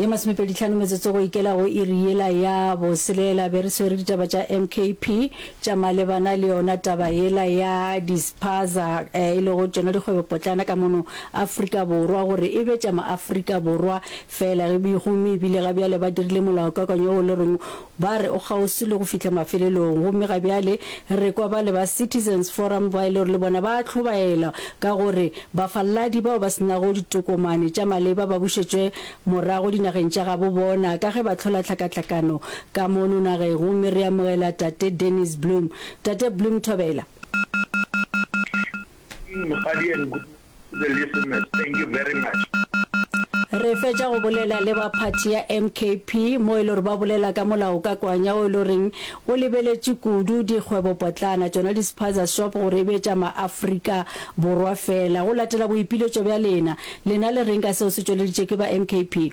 ye masomepeditlhano metsotso go ikela go iri yela ya boselela be re swere ditaba tša mkp tša malebana le yona taba yela ya dispaza eh, e lego tšona dikgwebopotlana ka mono afrika borwa gore e be tša maafrika borwa fela gomme ebile ga bjale ba dirile molaokakwanyo o le reng Ba re o kgauswi le go fihla mafelelong gomme ga bjale re kwa bale ba Citizens Forum ba e le gore le bona ba a hlobaela ka gore bafaladi bao ba se nago ditokomane tša maleba ba bušetšwe morago dinageng tša gabo bona ka ge ba hlola tlhakatlhakano ka mono nageng gomme re amogela Tate Dennis Bloem. Tate Bloem, thobela. Ke eng Mokgadi and Good morning. Re fetša go bolela le ba phathi ya MKP mo e le gore ba bolela ka molaokakwanya o e le goreng o lebeletše kudu dikgwebopotlana, tšona di-spaza shop, gore e be tša ma-Afrika Borwa feela. Go latela boipiletšo bja lena, lena le reng ka seo se tšweleditšwe ke ba MKP?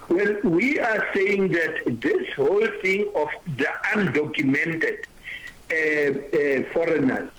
Well, we are saying that this whole thing of the undocumented foreigners,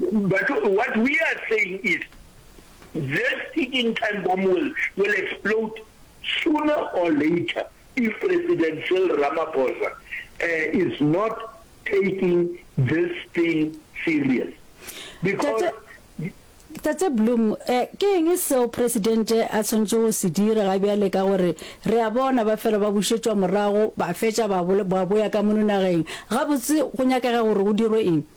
But what we are saying is this ticking time bomb will will explode sooner or later if President Cyril Ramaphosa uh, is not taking this thing serious because Tate Bloom eh, ke eng seo presidente a tshwanetse go se dira ga bjale ka gore re a bona ba fela ba bušetšwa morago ba fetša ba boya ka mono nageng gabotse go nyakega gore go dirwe eng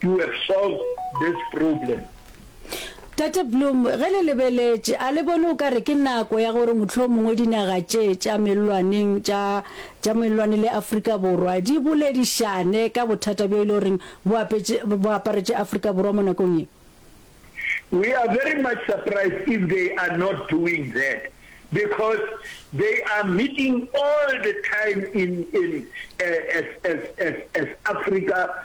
You have solved this problem. Tate Bloom, ge le lebeletše, a le bone o ka re ke nako ya gore mohlomongwe dinaga tše tša mellwaneng tša tša mellwane le Afrika Borwa di boledišane ka bothata bjo e le goreng bo apetše bo aparetše Afrika Borwa mo nakong ye? We are very much surprised if they are not doing that because they are meeting all the time in in as as as as Africa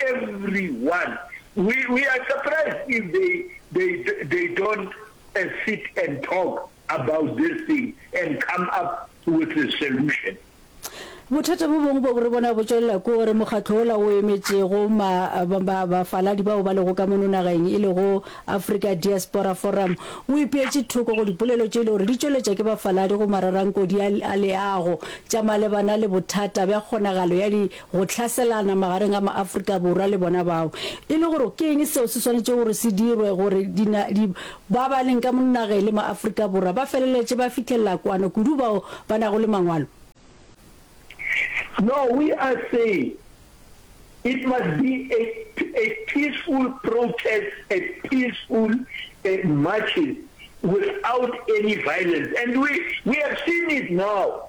everyone we we are surprised if they they they don't uh, sit and talk about this thing and come up with a solution bothata bo bongwe bo re bona bo tswelela ko gore mokgatlho ola o emetšego bafaladi bao ba lego ka mono nageng e lego africa diaspora forum o ipeetše thoko go dipolelo tše e le gore di tšweletša ke bafaladi go mararankodi a leago tša malebana le bothata bja kgonagalo ya go hlaselana magareng ga maAfrika Borwa le bona bao, e le gore ke eng seo se swanetšego gore se dirwe gore dinadi ba ba leng ka mo nageng le maAfrika Borwa ba feleletše ba fihlelela kwano kudu bao ba nago le mangwalo. No, we are saying it must be a a peaceful protest, a peaceful uh, marches without any violence and we we have seen it now.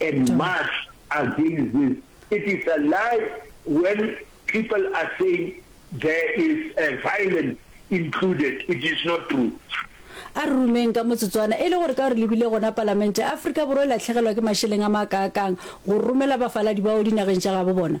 A march against this, it is a lie when people are saying there is violence included, it is not true. A re rumeng ka motsotswana, e le gore ka gore le bile gona Palamente, Afrika Borwa e latlhegelwa ke mašeleng a makaakang go romela bafaladi bao dinageng tša gabo bona.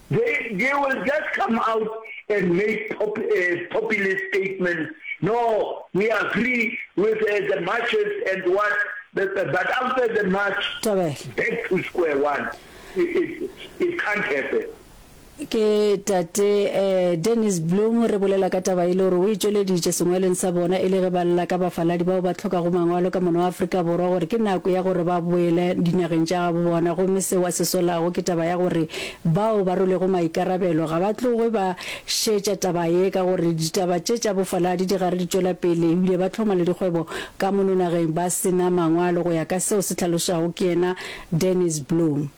They they will just come out and make pop populist statements, no we agree with the marches and what but after the march Thabela. back to square one it it it can't happen. Ke tate eh, Dennis Bloom re bolela ka taba e le gore o e tšweleditše sengwalweng sa bona e le ge ba lla ka bafaladi bao ba hlokago mangwalo ka mono Afrika Borwa gore ke nako ya gore ba boele dinageng tša gabo bona gomme seo a se solago ke taba ya gore Bao ba rwelego maikarabelo ga ba tloge ba šetša taba ye ka gore ditaba tše tša bofaladi di gare di tšwela pele ebile ba hloma le dikgwebo ka mono nageng ba se na mangwalo, go ya ka seo se hlalošwago ke yena Dennis Bloom.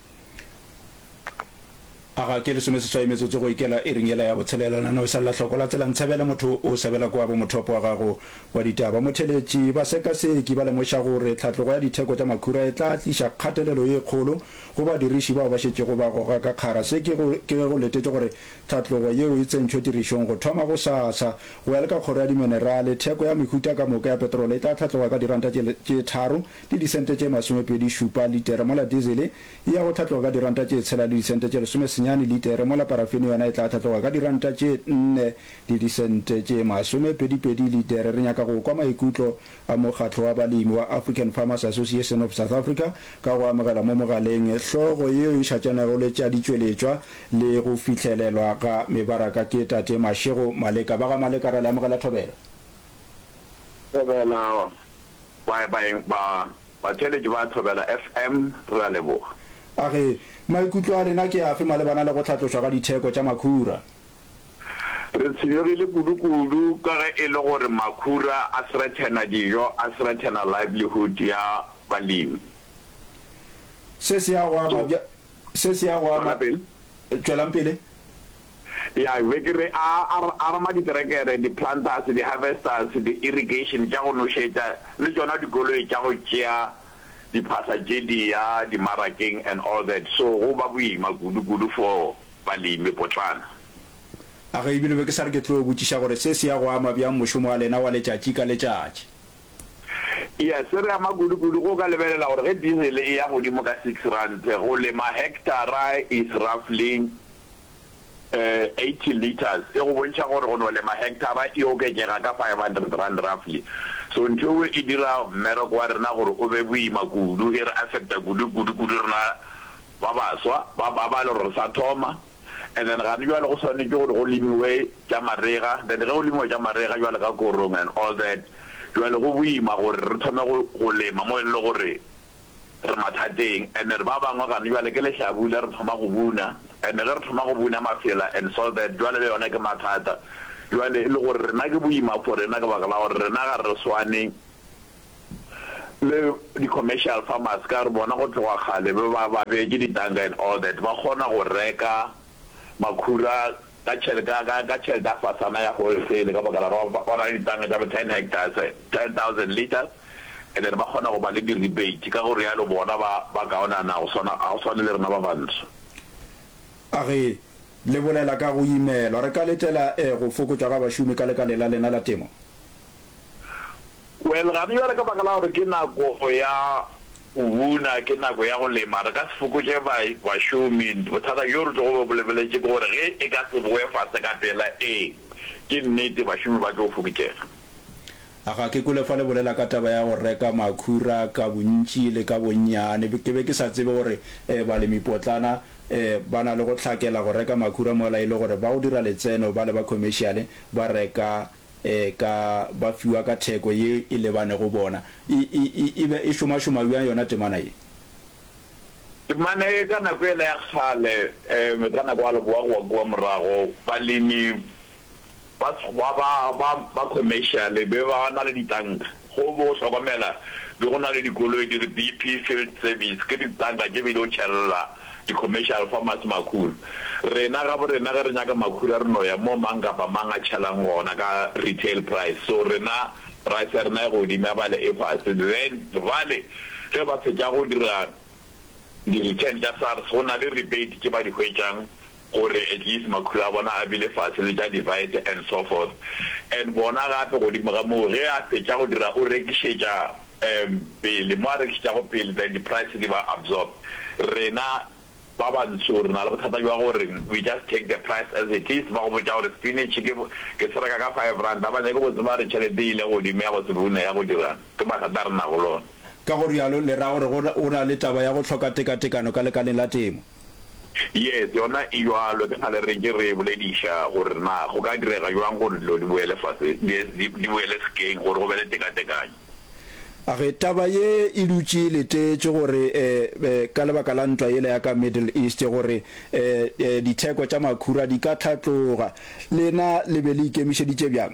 A ga ke lesomeseswai metsotso go ikela iring yela ya botshelela, la no sa lla hloko la tsela ntshebele motho o sabela kwa bomothopo wa gago wa ditaba. Motheletši, basekaseki ba lemoša gore tlhatlogo ya ditheko tša makhura e tla tliša kgatelelo ye kgolo Go badiriši bao ba šetšego ba goga ka kgara, se ke ge go letetšwe gore tlhatlogo yeo e tsentšhwe tirišong go thoma gosasa. Go ya le ka Kgoro ya Diminerale, theko ya mehuta ka moka ya petrolo e tla hlatloga ka diranta tše tharo le disente tše masomepedi šupa litere, mola dizele e ya go hlatloga ka diranta tše tshela le disente tše lesome senyane litere, mola parafene yona e tla hlatloga ka diranta tše nne le disente tše masomepedipedi litere. Re nyaka go kwa maikutlo a Mokgatlo wa Balemi wa African Farmers Association of South Africa ka go amogela mo mogaleng hlogo yeo e šatšanego le tša ditšweletšwa le go fihlelelwa ga mebaraka ke Tate Mashego Maleka. Ba ga Maleka ra le amogela thobela. Thobela, baeng ba batšweletši ba Thobela FM re a leboga. A re, Maikutlo a lena ke afe malebana le go hlatlošwa ga ditheko tša makhura? Re tshwenyegile kudukudu ka ge e le gore makhura a threathena dijo, a threathena livelihood ya balemi. Se se ya go ama bja, se se ya go ama, tšwelang pele. Ya, be ke re a, a, a re ma diterekere, di-planters, di-harvesters, di-irrigation tša go nošetša, le tšona dikoloi tša go tšea diphahla tše di ya dimarakeng and all that, so go ba boima kudukudu for ba le ime potlana. A ge ebile be ke sa re ke tlo botšiša gore se se ya go ama bjang mošomo wa lena wa letšatši ka letšatši. Iya, se re ama kudu-kudu ge o ka lebelela gore ge diesel e ya godimo ka six rand, go lema hectara is roughly eh eighty litres, e go bontšha gore go no lema hectara e oketšega ka five hundred rand roughly. So ntho eo e dira mmereko wa rena gore o be boima kudu, e re affecta kudu-kudu kudu rena. ba baswa ba ba ba le gore re sa thoma and then gane jwale go swanetše gore go lemiwe tša marega then ge go lemiwa tša marega jwale ka korong and all that jwale go boima gore re thome go go lema mo e lego gore re mathateng and then ba bangwe gane jwale ke lehlabula re thoma go buna and ge re thoma go buna mafela and so that jwale le yona ke mathata jwale e le gore rena ke boima for rena ke baka la gore rena ga re swane Le di commercial farmers ka gore bona go tloga kgale be ba ba beetše di tanka and all that ba kgona go reka makhura ka tšhelete ka ka ka tšhelete ya fasana ya wholesale ka baka la gore ba ba na le di tanka tša bo ten hectares ten thousand liters and then ba kgona go ba le di rebate ka go realo bona ba ba kaonana go swana ga go swane le rena ba bantsho. A re le bolela ka go imelwa re ka letela eh go fokotšwa ga bašomi ka lekaleng la lena la temo? Well, gane bjale ka baka la gore ke nako ya go buna, ke nako ya go lema, re ka se fokotše ba, bašomi. Bothata bjo re tlogo be bo lebeletše ke gore ge e ka se bowe fase ka pela, ee, ke nnete, bašomi ba tlo fokotšega. A ga ke kwele fa le bolela ka taba ya go reka makhura ka bontši le ka bonnyane. Ke be ke sa tsebe gore balemipotlana ba na le go hlakela go reka makhura mola e le gore ba go dira letseno bale ba khomešiale ba reka ka ba fiwa ka theko ye e lebanego bona. E, e, e, e be e šomašoma bjang yona temana ye? Temana ye, ka nako yela ya kgale, um, ka nako ya Leboa go wa kua morago, balemi ba, ba, ba, ba, ba commercial be ba na le ditanka. Go bo hlokomela be go na le dikoloi di re BP Field Service, ke ditanka tše be di o tšhelela di-commercial farmers makhura. Rena gaborena ge re nyaka makhura re no ya mo mang kapa mang a tšhelang gona ka retail price. So rena price ya rena e godimo ya bale e fase. Then bale ge ba fetša go dira di-return tša SARS go na le rebate tše ba di hwetšang. gore at least makhulo a bona a bile fase le tša divite and so forth and bona gape godimo ga moo ge a fetša go dira o rekišetša um pele mo a rekišetšago pele then di price di ba absorb rena ba bantsho re na le bothata bja gore we just take the price as it is ba go botša gore spinach ke ke se reka ka five rand a ba nyake go tseba re tšhelete ile godimo ya go se bune ya go dira ke mathata a re nago lona. Ka go rialo le ra gore go na le taba ya go hloka tekatekano ka lekaleng la temo. Yes, yona e bjalo. Ke kgale re ntše re e bolediša gore na go ka direga bjang gore dilo di boele fase, di, di, di boele sekeng, gore go be le tekatekanyo. A ge taba ye e dutše e letetše gore e, e, ka lebaka la ntwa yela ya ka Middle East, gore e, e, ditheko tša makhura di ka hlatloga? Lena le be le ikemišeditše bjang?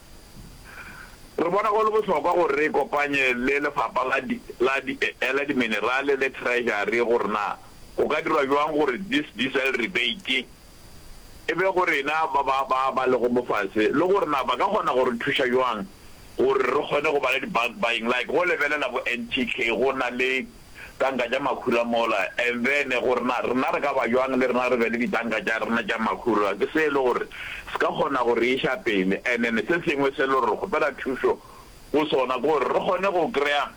Re bona go le bohlokwa gore re ikopanye le Lefapha la di, la di, la Diminerale le Treasury gore na go ka dirwa bjang gore this diesel rebate e be go rena ba ba, ba ba lego mofase le gore na ba ka kgona go re thuša bjang gore re kgone go ba le di bulk buying like go lebelela bo NTK go na le tanka tša makhura mola, and then go re na rena re ka ba bjang le rena re be le ditanka tša rena tša makhura, ke se e le gore se ka kgona go re iša pele, and then se sengwe se e le gore re kgopela thušo go sona ke gore re kgone go kry-a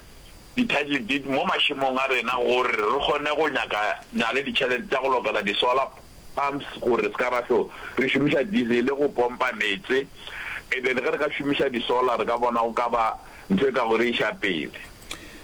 di-title deed mo mašemong a rena gore re kgone go nyaka nya le ditšhelete tša go lokela di-solar pumps gore se ka ra hlo re šomiša diesel go pompa meetse, and then ge re ka šomiša di-solar re ka bona go ka ba ntho e ka go re iša pele.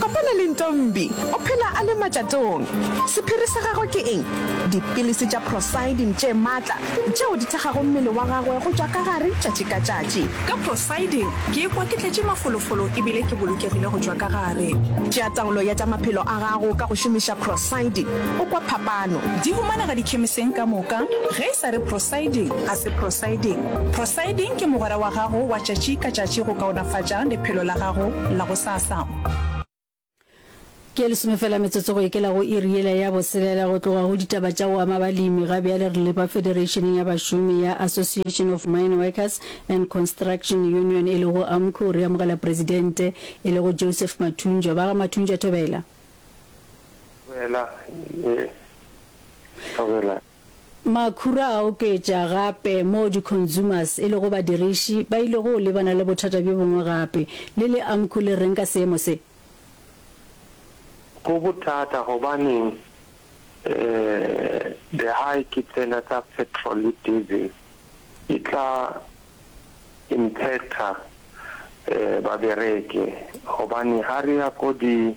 Kopana le Ntombi, o phela a le matšatong. Sephiri sa gagwe ke eng? Dipilisi tša Procydim tše matla, tšeo di thekgago mmele wa gagwe go tšwa ka gare tšatši ka tšatši. Ka Procydim ke ikwa ke tletše mafolofolo e bile ke bolokegile go tšwa ka gare. Tšea taolo ya tša maphelo a gago ka go šomiša Procydim, o kwa phapano. Di humanega dikhemiseng ka moka. Ge e sa re Procydim, ga se Procydim. Procydim ke mogwera wa gago wa tšatši ka tšatši go kaonafatša lephelo la gago la go sa. Sasang. Ke lesome fela metsotso go ikela go iri yela ya boselela go tloga go ditaba tša go ama balemi ga bjale re lepa federationeng ya bašomi ya Association of Mine Workers and Construction Union e lego AMCU re amogela presidente e lego Joseph Mathunjwa ba ga Mathunjwa Thobela Thobela Makhura a oketša gape moo di-consumers e lego badiriši ba ilego go lebana le bothata bjo bongwe gape. Le le Amcu le reng ka seemo se? Go bothata gobaneng the high ke tsena tsa petrol le diesel e tla impacter babereki gobane ga re ya ko di.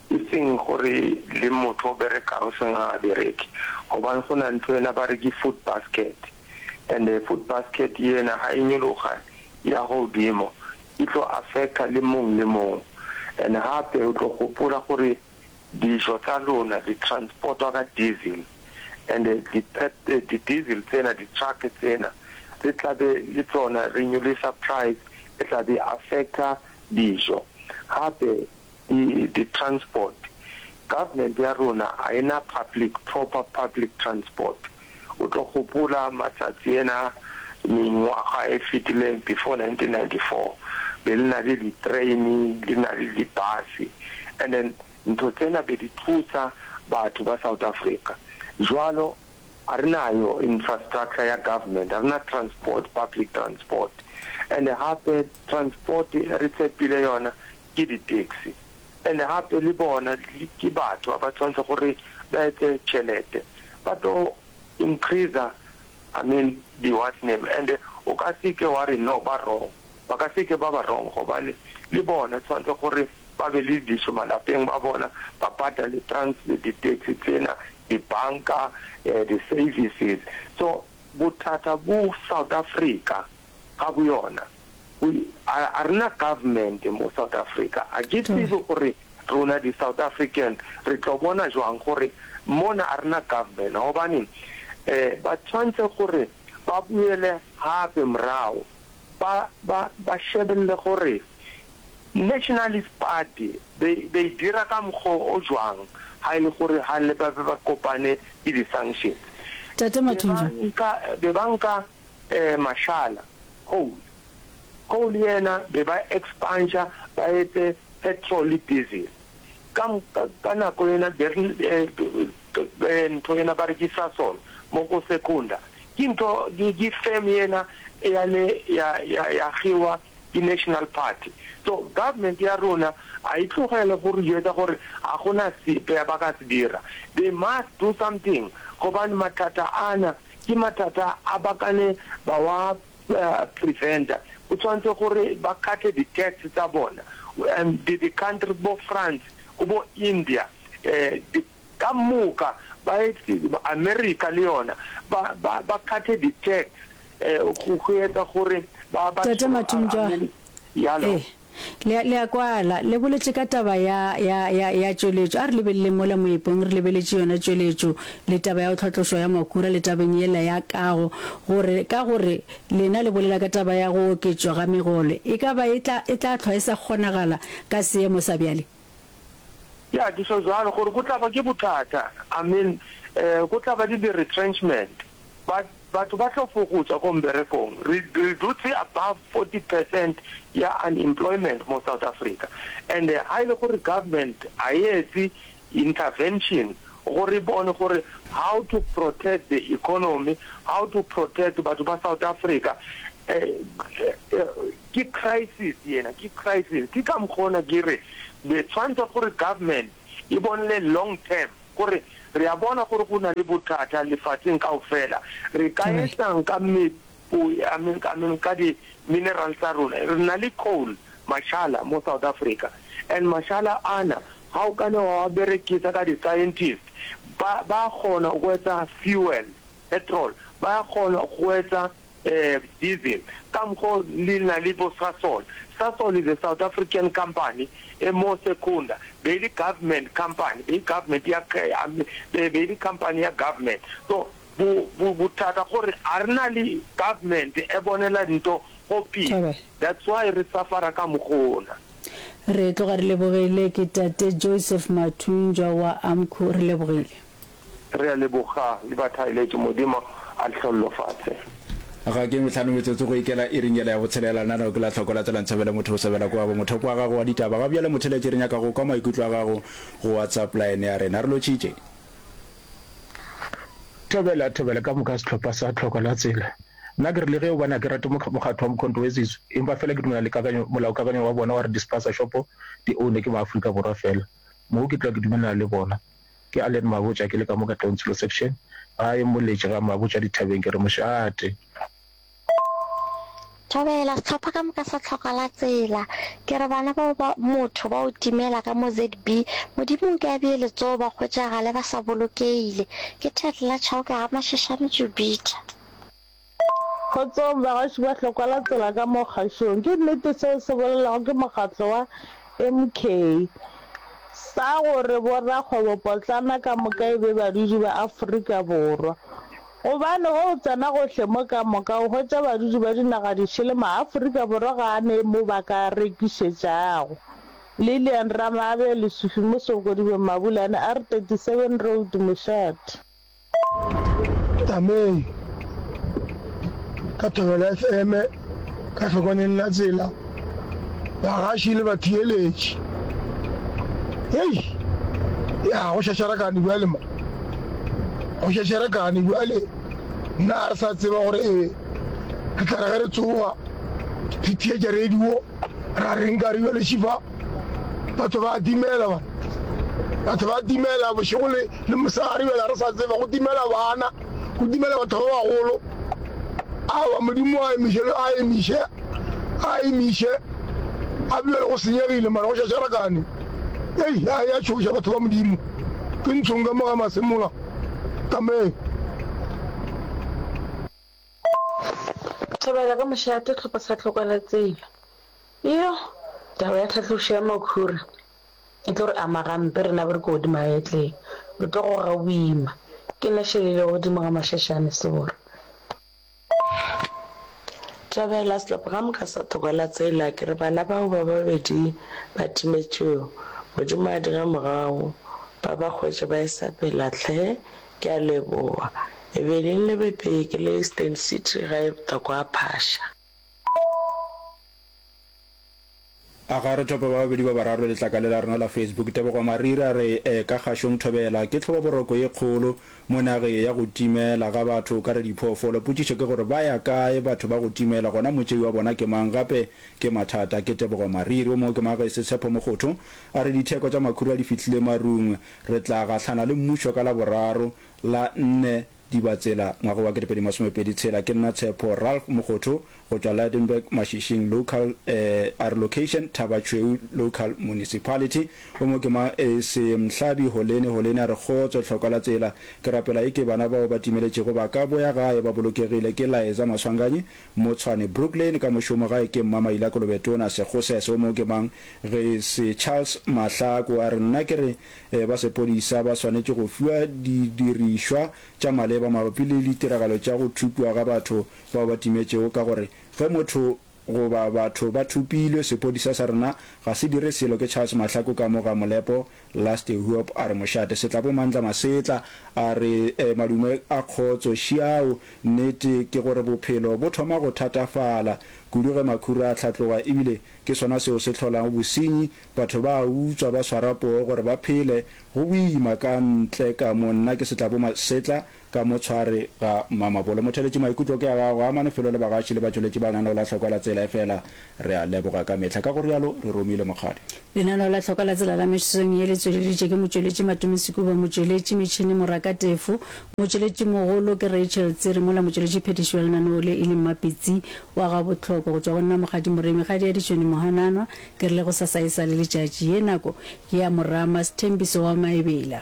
E seng gore le motho o berekang o seng ga a bereke gobane go na ntho ena ba re ke food basket and food basket yena ga e nyologa ya go godimo e tlo affecta le mong le mong and gape o tlo gopola gore dijo tsa lona di transportwa ka diesel and di diesel tsena di truck tsena re tla be le tsona re nyolisa price e tla be affecta dijo gape Di di transport, government ya rona a e na public proper public transport. O tlo gopola matsatsi ena mengwaga e fetileng before 1994 be le na le di train le na le di bus and then ntho tsena be di thusa batho ba South Africa. Jwalo a re nayo infrastructure ya government, a re na transport public transport and hape transport e re tshepile yona ke di taxi and gape le bona ke batho ba ba tshwanetse gore ba etse tšhelete ba tlo increaser I mean di what name and o ka se ke wa re no ba wrong ba ka se ke ba ba wrong gobane le bona tshwanetse gore ba be le dijo malapeng ba bona ba patale trans di taxi tsena di banka di services so bothata bo South Africa ga bo yona. A a rena government mo South Africa, a ke tsebe gore rona di South African re tlo bona jwang gore mona a rena government gobane um ba tshwantse gore ba boele gape morago ba ba ba shebelele gore Nationalist Party be be e dira ka mokgwa o jwang ha e le gore ha le ba be ba kopane le di sanctions. Tate Mathunjwa. Be ba nka be ba nka. eh mashala, coal, coal yena be ba expansha ba etse petrol le diesel ka ka nako yena be re eh ntho yena ba re ke Sasol mo ko Secunda ke ntho ke firm yena ya le ya ya ya kgiwa ke National Party so government ya rona a e tlogele go re jwetsa gore ga gona sepe ba ka se dira they must do something gobane mathata ana Ke mathata a ba kane ba wa preventer. Go tshwanetse gore ba kate di tax tsa bona. And di country bo France go bo India di ka moka ba etse America le yona ba ba ba kate di tax go go etsa gore ba ba Tate Mathunjwa, Yalo. eh Le, le a kwala, le boletše ka taba ya, ya, ya, ya tšweletšo. A re lebeleleng mola moepong, re lebeletše yona tšweletšo, le taba ya go tlhatlošwa ya makura, le tabeng yela ya kago, gore, ka gore lena le bolela ka taba ya go oketšwa ga megolo, e ka ba e tla, e tla hlwa e sa kgonagala ka seemo sa bjale. Ya, ke tšho bjalo, gore go tla ba ke bothata. Amen. E, go tla ba le di-retrenchment. Ba, batho ba tlo fokotšwa ko mberekong. Re, re dutse above forty percent ya unemployment mo South Africa. And ha e le gore government ha e etse intervention gore e bone gore how to protect the economy, how to protect batho ba South Africa, e, e, e, Ke crisis yena, ke crisis. Ke ka mokgo na ke re be tshwantse gore government e bonele long term gore re a bona gore go na le bothata lefatsheng kaofela. Re ka etsa'ng ka meepo, I mean, I mean ka di minerals tsa rona. Re na le coal, mashala, mo South Africa and mashala ana ha o ka ne wa a berekisa ka di scientist ba, ba a kgona go etsa fuel, petrol, ba a kgona go etsa diesel, ka mokgo le na le bo Sasol. Sasol is a South African company e mo Secunda, be e le government company, be e government ya, be e le company ya government. So bo, bo, bothata gore a re na le government e bonela dinto go pele, that's why re suffer-a ka mokgona. Re tloga re lebogile, ke Tate Joseph Mathunjwa wa Amcu, re lebogile. Re a leboga le ba thaeletšo, Modimo a le hlollofatše. Ga ke mehlano metsotso go ikela iring yela ya botshelela, lenaneo ke la tlhoko la tsela Ntshebele motho o sobela ko abo mothopo wa gago wa ditaba ga bjale motheletše re nyaka go kwa maikutlo a gago go WhatsApp line ya rena re lotšhitše. Thobela thobela ka moka sehlopha sa tlhoko la tsela nna ke re le ge o bona ke rate mokgatho wa Mkhonto we Zizu empa fela ke dumela le kakanyo molaokakanyo wa bona wa re di spaza shopo di ownwe ke ma Afrika Borwa fela moo ke tloa ke dumelana le bona Ke Allen Mabotja ke le ka mo Katlehong Tshilo Section ga e mmoletše ga Mabotja dithabeng ke re mošate. Thobela sehlopha ka moka sa tlhoka la tsela ke re bana bao ba motho ba o timela ka mo ZB modimo o ke a bee letsoho ba hwetšagale ba sa bolokeile ke Thetla Chauke ga Mashashane Jupiter. Kgotsong bagašo ba hlokwa la tsela ka mo kgašong. Ke nnete seo se bolelwago ke mokgatlo wa MK sa gore bo rakgwebo potlana ka moka e be badudi ba Afrika Borwa. Gobane ge o tsena gohle mo ka moka o hwetša badudi ba dinaga dišele ma Afrika Borwa ga a ne mo ba ka rekišetšago. Lillian Ramabe, Lesufi, Mosoko, Dibeng, Mabulane, R37 Road, Mošate. Tsamei ka Thobela FM ka hlokwaneng la tsela, bagaši le batheeletši. Hei! Ya, go šašarakane bjale mo. Go šašarakane bjale. Nna ga re sa tseba gore e re tla re ge re tsoga re theetša radio. Ra reng ka re bjale šifa batho ba timela ba batho ba timela bošego le le mosegare bjale re sa tseba go timela bana go timela batho ba bagolo awa modimo a emiše a emiše a emiše a bjale go senyegile mara go šašarakane ei a ya tšhoša batho ba modimo ke ntshong ka moga masemola kameng Thobela ka mošate tlhopho sa tlhoko la tsela. Iyo, taba ya tlhatlošo ya makhura e tlo re ama gampe rena ba re ko godimo ga etleng. Re tlo goga boima. Ke nna šelilego godimo ga mašašane sebora. Thobela, setlaphoramu ka sa thoko la tsela. Ke re bana bao ba babedi ba timetšwego, Modimo a dira morago ba ba hwetše ba e-sa pela tlhe Ke a leboga. E be le nlebepee ke le Eastern City gae bta kwa Phasha. A ga re thope ba babedi ba bararo letlakale la rena la Facebook. Tebogo Mariri a re, E, ka Kgašong Thobela ke tlhobaboroko ye kgolo mo nageng ya go timela ga batho ka re diphoofolo. Potšišo ke gore ba ya kae batho ba go timela gona motšei wa bona ke mang gape ke mathata? Ke Tebogo Mariri. O mongwe ke Maagesi Tshepo Mogotho a re ditheko tša makhura di fihlile marung Re tla gahlana le mmušo ka Laboraro la nne Dibatsela ngwaga wa 2026. Ke nna Tshepo Ralph Mokgotho go tšwa Lydenburg Mašishing Local eh, are Location Thaba Tšhweu Local Municipality O mo ke ma eh, se Mhlabi Holene Holene a re Kgotso Tlhokwa la Tsela Ke rapela eke bana bao ba timeletšego ba ka boya gae ba bolokegile Ke Laeza Maswanganyi Motshwane, Brooklyn, ka mošomo gae ke Mma Maila Kolobetona, Segose, seo moo ke mang? Re se Charles Mahlaku a re nna ke re eh, ba sepodisa ba swanetše go fiwa didirišwa tša maleba mabapi le litiragalo tša go thupiwa ga batho bao ba timetšego ka gore ge motho goba batho ba thupilwe sepodisa sa rena ga se dire selo ke Charles Mahlaku ka mo ga Molepo Last Huop a re mošate Setlabomandla Masetla a re madume a kgotso šiao nnete ke gore bophelo bo thoma go thatafala kudu ge makhura a hlatloga ebile ke sona seo se hlolago bosenyi batho ba a utswa ba swara poo gore ba phele go boima ka ntle ka mo nna ke Setlaboma Setla Ka motshwari ga Mmamabolo. Motheletši maikutlo ke a gago. Amane Felo le bagaši le batšweletši ba Lenaneo la Hlokwa la Tsela efela re a leboga ka mehla. Ka go rialo re romile mokgadi. Lenaneo la Hlokwa la Tsela la mesong ye le tšweleditšwe ke motšweletši Matume Sekuba, motšweletši metšhini Moraka Tefo, motšweletši mogolo ke Rachel Tsiri mola motšweletši phethiši wa lenaneo le e leng Mapitsi wa ga Botlhoko. Go tšwa go nna Mokgadi Moremi, Kgadi ya Ditšhwene Mohananwa, ke re le go sasae sa le letšatši. Ye nako ke ya Morama Sthembiso wa Maebela.